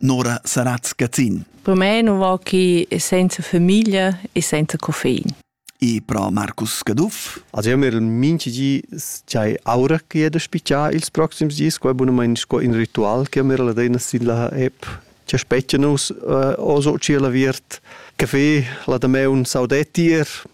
Nora Saratz Gazzin. Per me nu va chi senza famiglia e senza coffein. E pro Marcus Caduff. Also io mir minchi di c'hai aura che da spicciar ils proxims dis, qua bunamain sco in ritual che mir la dena sin la app che speccia nus uh, o so ci la viert caffè, la dameun saudetti ir,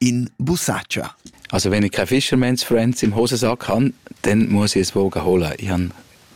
in busacha. Also wenn ich kein Fischermensch Freund im Hosensack habe, dann muss ich es wohl holen. Ich habe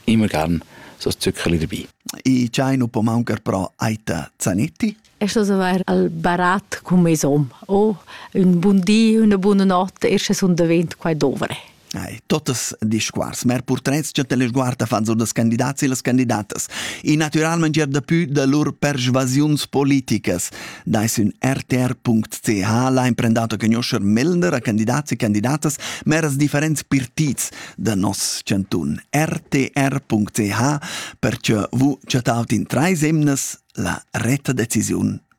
immer gern so ein Zuckerli dabei. I chai non può mancar però Aita Zanetti? Ist also ein Barat come som o un buon dì, una buona notte, erst un davent qua dovre. Ei, totas discuors, mer purtrets che teleguarta fan sur dels candidats e les candidatas. И naturalment er daplü da lur persuasiuns politicas. Dai sün rtr.ch l'ha imprendato conoscer melder a candidats e candidatas meras differents partits da nos cantun. rtr.ch perche vu chattaut in trais emnas la retta decisiun